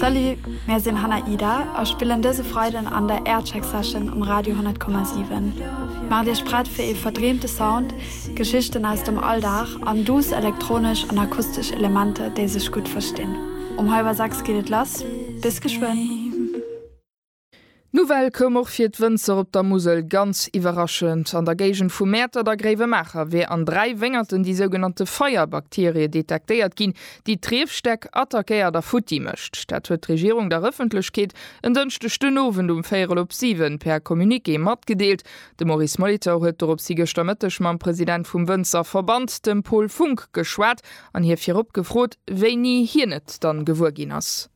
Salut, mär sinn Hannah Ida a spillen dëse Freiden an der Aircheck Session um Radio 100,7. Maacht Iech prett fir ee verdreemte Sound, Geschichten aus dem Alldag an duuss elektronesch an akustesch Elementer, déi sech gutt verstinn. Um hallwer 6 geet et lass, bis geschwënn! D'Nouvelle koum och fir d'Wënzer op der Musel ganz iwwerraschend. An der Géigend vu Mäertert a Gréiwemaacher wär an dräi Wéngerten déi sougenannte Feierbakterie detektéiert ginn, déi d'Riefstäck attackéiert a futti mécht. Dat huet d'Regierung der Ëffentlechkeet en Dënschdeg den Owend um véierel op siwen per Communiqué matgedeelt. De Maurice Molitor huet doropshi gëschter Mëtteg mam President vum Wënzerverband, dem Paul Funck, geschwat an hie virop gefrot, wéini hien et dann gewuer ginn ass.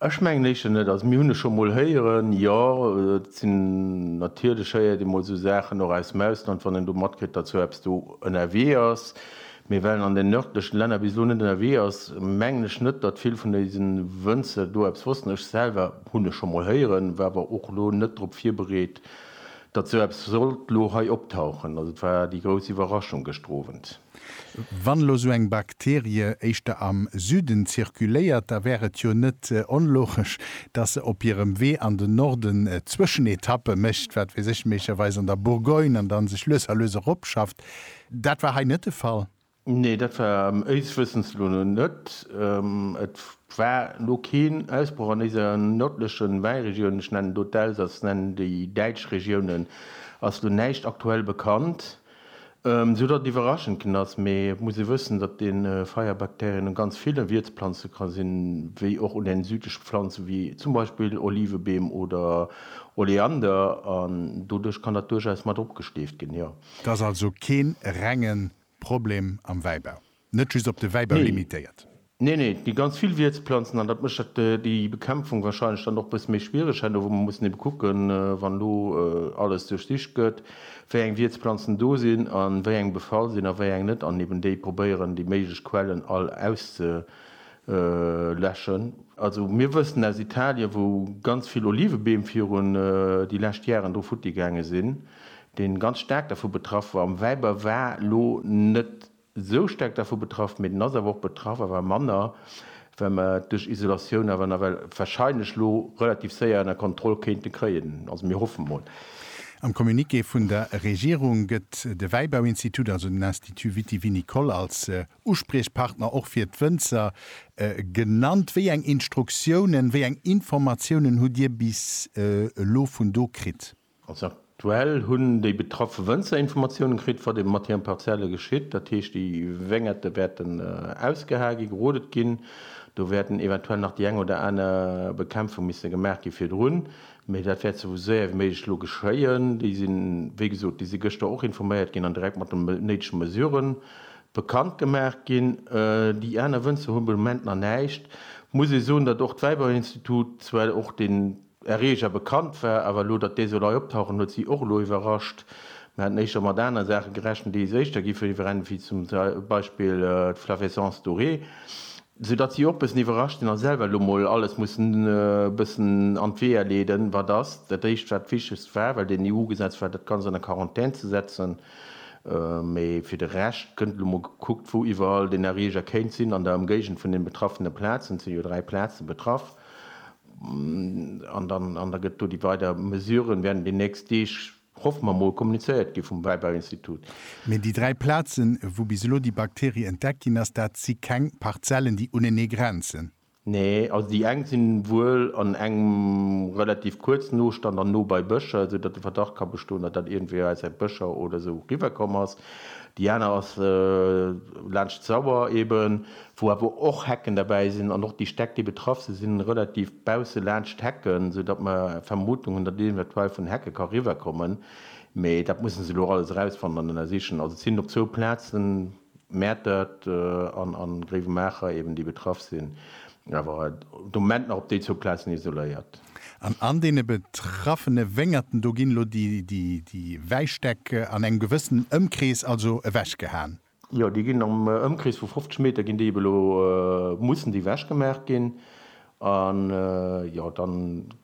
Ech mengen éischter net. Also mir hunn e scho mol héieren, jo, et sinn natierlech, héiert ee mol esou Saachen och aus dem Ausland, wann een do matkritt, datt esou eppes do ënnerwee ass. Mee well en an den nërdlechen Länner bis elo net ënnerwee ass, mengen ech net, datt vill vun dëse Wënzer do eppes wossten. Ech selwer hunn e scho mol héieren, war awer och elo net drop virbereet, datt esou eppes sollt elo hei optauchen. Also et war déi grouss Iwwerraschung gëschter Owend. Wann elo esou eng Bakterie éischter am Süden zirkuléiert, da wär et jo net onlogesch, dass se op hirem Wee an den Norden Zwëschenetappe mécht, wat weess ech, méiglecherweis an der Bourgogne, an dann sech lues a lues eropschafft. Dat war hei net de Fall. Nee, dat war éis Wëssens no net. Et war elo keen Ausbroch an déiser nërdleche Wäiregioun, ech nennen do d'Elsass, nennen déi däitsch Regiounen, ass elo näischt aktuell bekannt. Sou datt et iwwerraschend ginn ass. Mee et muss ee wëssen, datt de Feierbakterien un ganz ville Wierzplanze ka sinn, wéi och un den südleche Pflanzen, wéi zum Beispill Olivebeem oder Oleander. An doduerch kann dat duerchaus mat opgesteeft ginn, jo. Et ass also kee rengen Problem am Wäibau. Net just op de Wäibau limitéiert. Nee, nee, et gi ganz vill Wiertsplanzen an dat mécht déi Bekämpfung wahrscheinlech dann och e bësse méi schwiereg. Herno wou mer mussen ebe kucken, wann elo alles duerchsicht gëtt, wéi eng Wiertsplanzen do sinn a wéi eng befall sinn a wéi eng net an eben déi probéieren, déi méiglech Quellen all auszeläschen. Also mir wëssen aus Italien, wou ganz vill Olivebeem virun déi lescht Jaren do futti gaange sinn, deen ganz staark dervu betraff war, am Wäibau war elo net esou staark dervu betraff, mee den ass awer och betraff, awer manner, well mer et duerch Isolatioun awer nawell wahrscheinlech elo relativ séier ënner Kontroll kéinte kréien. Also mir hoffe mol. Am Communiqué vun der Regierung gëtt de Wäibauinstitut, also den Institut vitivinicole, als Uspriechpartner och fir d'Wënzer genannt. Wéi eng Instruktiounen, wéi eng Informatiounen hutt Dir bis elo vun do kritt? Also aktuell hunn déi betraffe Wënzer Informatiounen kritt, wat ebe mat hiren Parzelle geschitt. Dat heescht, déi Wéngerte wäerten ausgehae ginn, gerodet ginn. Do wäerten eventuell nach déi eng oder aner Bekämpfung misse gemaach gi virdrun, mee dat wäert sou séier wéi méiglech elo geschéien. Déi sinn, wéi gesot, déi si gëschter och informéiert ginn an direkt mat de néidege Mesure bekannt gemaach ginn. Déi aner Wënzer hu be Moment nach näischt. Muss ee soen, datt och d'Wäiberinstitut zwar och den Erreger bekannt war, awer elo, datt dee soll hei optauchen, huet si och elo iwwerrascht. Mir haten éischter mat aner Saache gerechent, déi éischter gi verbrennen, wéi zum Beispill d'Flavescence dorée, soudatt si och bëssen iwwerrascht sinn a selwer elo mol alles mussen e bëssen an d'Weeër leeden, wat ass dat éischt, wat d'Wichtegst war, well den EU-Gesetz war, dat Ganzt an der Quarantän ze setzen. Mee fir de Rescht gëtt elo mol gekuckt, wou iwwerall den Erreger kéint sinn an der Ëmgéigend vun den betraffene Plazen, et sinn jo dräi Plaze betraff. An da gëtt do déi weider Mesuren, wäerten déi nächst Deeg, hoffe mer mol, kommunizéiert gi vum Wäibauinstitut. Mee déi dräi Plazen, wou bis elo déi Bakterie entdeckt ginn ass, dat si keng Parzellen, déi unenee grenzen? Nee, also déi eng si wuel an engem relativ kuerzen Nostand an no bei Bëscher, esou datt de Verdacht ka bestoen, datt dat iergendwéi aus säit Bëscher oder esou riwwer komm ass. Déi aner ass laanscht d'Sauer eeben. wou awer och Hecken derbäi sinn an och déi Stäck, déi betraff sinn, sinn relativ bausse laanscht d'Hecken, sou datt mer d'Vermutung hunn, datt eventuell vun Hecke ka riwwerkommen. Mee dat mussen se elo alles erausfannen an ënnersichen. Also et sinn op zwou Plazen, Mäertert an Gréiwemaacher eben, déi betraff sinn, awer de Moment nach op déi zwou Plazen isoléiert. An an deene betraffene Wéngerten do ginn elo déi Wäistäck an engem gewëssenen Ëmkrees also ewechgehaen? Jo, déi ginn am Ëmkrees vu 50 Meter ginn déi ebe lo, mussen déi wechgemaach ginn. An jo, da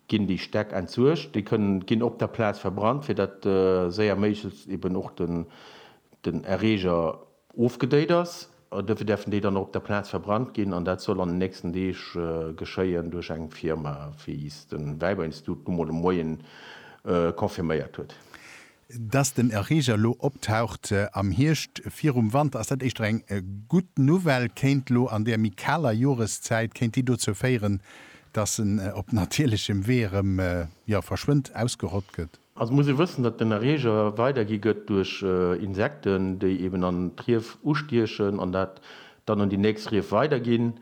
ginn déi Stäck entsuergt. Déi kënnen, ginn op der Plaz verbrannt, fir datt séier méiglechst eben och den, den Erreeger ofgedéit ass. Duerfir däerfen déi dann och op der Plaz verbrannt ginn. An dat soll an den nächsten Deeg geschéien duerch eng Firma, wéi es de Wäiberinstitut nu mol de Moien confirméiert huet. Dass den Erreeger elo optaucht am Hierscht virum Wanter, ass dat éischter eng gutt Nouvelle, kéint elo an där méi kaler Joreszäit, kéint déi dozou féieren, dass en op natierlechem Wee erëm, jo, verschwënnt, ausgerott gëtt? Also muss ee wëssen, datt den Erreeger weidergi gëtt duerch Insekten, déi eben an d'Rief ustiechen an dat dann un déi nächst Rief weiderginn.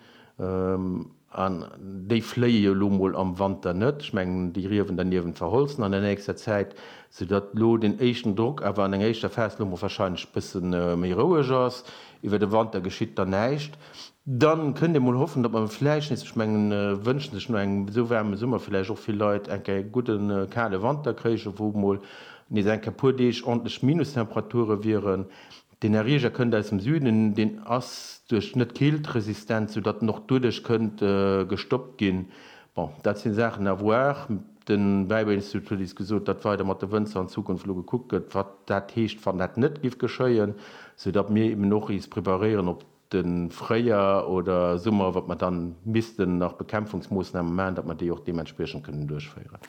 An déi fléie jo elo mol am Wanter net, ech mengen déi Riewen derniewent verholzen an der nächster Zäit, soudatt elo deen éischten Drock awer an enger éischter Phas elo mol wahrscheinlech e bësse méi roueg ass. Iwwer de Wanter geschitt dann näischt. Dann kënnt ee mol hoffen, datt mer vläicht nees, ech mengen et wënschen sech no engem esou waarme Summer vläicht och vill Leit, eng Kéier e gudde kale Wanter kréichen, wou mol nees eng Kéier e puer Deeg ordentlech Minustemperaturen wieren. Deen Erreeger kënnt aus dem Süden, deen ass duerch net keeltresistent, sou datt en och duerduerch kënnt gestoppt ginn. Bon, dat sinn Saachen à voir. De Wäibauinstitut huet is gesot, datt weider mat de Wënzer an Zukunft elo gekuckt gëtt, wat dat heescht, wann dat net giff geschéien, sou datt mir eben och is preparéieren op de Fréijar oder Summer, iwwer mer dann missten nach Bekämpfungsmoossname maachen, datt mer déi och deementspriechend kënnen duerchféieren.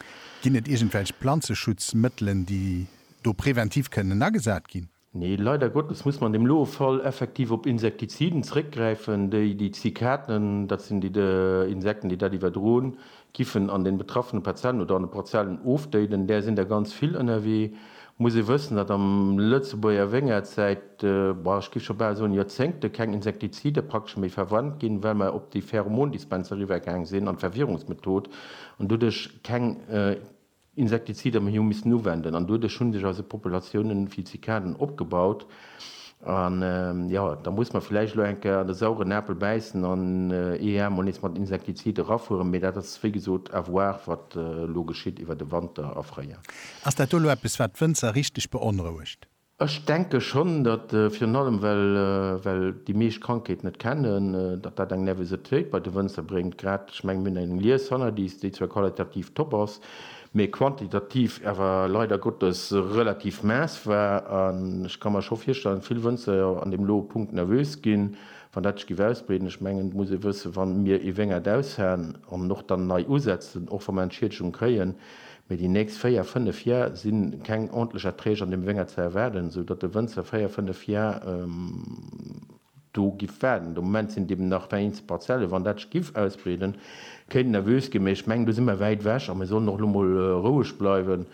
Ginn et iergendwelch Planzeschutzmëttelen, déi do preventiv kënnen agesat ginn? Nee, leider Gottes muss mer an deem loe Fall effektiv op Insektiziden zréckgräifen, déi déi Zikaten, dat sinn déi Insekten, déi dat iwwerdroen, giffen an den betraffene Parzellen oder an de Parzellen ofdéiden. Där sinn der ganz vill ënnerwee. Muss ee wëssen, datt am Lëtzebuerger Wéngert säit, boah, ech giff scho bal soen Joerzéngte keng Insektizide praktesch méi verwannt ginn, well mer op déi Pheromondispenser eriwwergaang sinn an d'Verwirrungsmethod an doduerch keng Insektizider mir hu missen uwenden an doduerch hu sech eise Populatiounen vun Zikaden opgebaut. An jo, da muss mer villäicht elo eng Kéier an de sauren Apel bäissen an ee Jar mol nees mat Insektizid erafueren, mee dat ass wéi gesot à voir, wat elo geschitt iwwert de Wanter a Fréijoer. Ass dat do elo eppes, wat d'Wënzer richteg beonrouegt? Ech denke schonn, datt, virun allem well well déi meescht d'Krankheet net kennen, datt dat eng Nervositéit bei de Wënzer bréngt. Grad, ech mengen mir hunn eng Lies hannert is, déi zwar qualitativ top ass, mee quantitativ awer leider Gottes relativ maess war. An ech ka mer scho virstellen, datt vill Wënzer jo an deem lo Punkt nervös ginn, wann dat sech géif ausbreeden. Ech mengen, et muss ee wëssen, wa mir ee Wéngert aushaen an och dann nei usetzen, och wa mer Entschiedegung kréien, Mee déi nächst véier, fënnef Jar si keng ordntlech Erträg an deem Wéngert ze erwaarden, esou datt de Wënzer véier, fënnef Jar do giff waarden. De Moment sinn et eben nach der eenzel Parzellen. Wann dat sech giff ausbreeden, kéint et nervös ginn. Mee ech mengen do si mer wäit ewech a mir sollen och elo mol roueg bleiwen,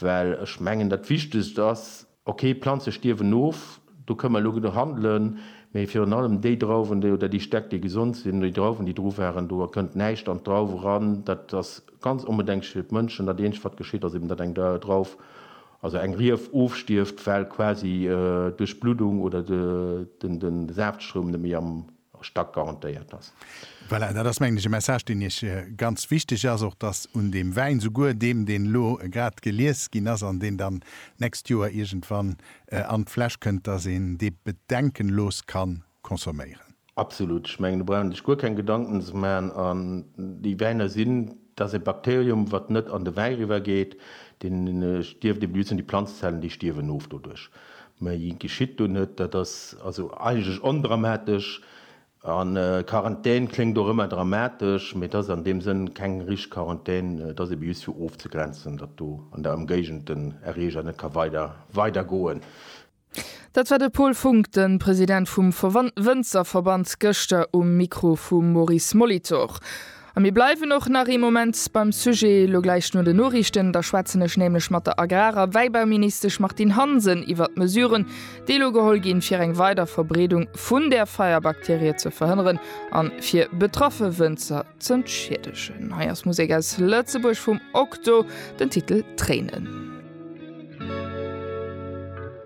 well ech mengen dat Wichtegst ass, Ok, Planze stierwen of, do kënn mer elo genuch handelen, mee virun allem déi Drauwen déi, oder déi Stäck déi gesond sinn, oder déi Drauwen déi dru waren, do kënnt näischt an d'Drauf eran. Dat ass ganz onbedenklech fir d'Mënschen. Dat eenzegt wat geschitt ass eben, datt eng Drauf, also eng Rief ofstierft, well quasi duerch d'Bluddung oder den Saaftstrom net méi am och stack garantéiert ass. Voilà, dat ass, mengen ech, e Message, deen Iech ganz wichteg ass, och dass un deem Wäin, souguer deem, deen elo grad gelies ginn ass an deen dann d'nächst Joer iergendwann an d'Fläsch kënnt, dass een dee bedenkenlos ka consomméieren. Absolut. Ech mengen, do brauch een sech guer keng Gedanken ze maachen. An déi Wäiner sinn, dat ass e Bakterium, wat net an de Wäi eriwwer geet, deen stierft eben, déi sinn déi Planzezellen, déi stierwen of doduerch. Méi geschitt do net. Dat ass also eigentlech ondramatesch. A Quarantän kléngt och ëmmer dramatesch, mee et ass an deem Sënn keng richteg Quarantän. Et ass ebe just fir ofzegrenzen, datt do an der Ëmgéigend den Erreeger net ka weider weidergoen. Dat war de Paul Funk, de President vum Wënzerverband, gëschter um Mikro vum Maurice Molitor. A mir bleiwen och nach ee Moment beim Sujet, elo gläich no den Noriichten. Da schwätzen ech nämlech mat der Agrar a Wäibauministesch Martine Hansen iwwert d'Mesuren, déi elo geholl ginn, fir eng weider Verbreedung vun där Feierbakterie ze verhënneren a fir betraffe Wënzer z'entschiedegen. Hei ass Musek aus Lëtzebuerg vum Okto, den Titel Tréinen.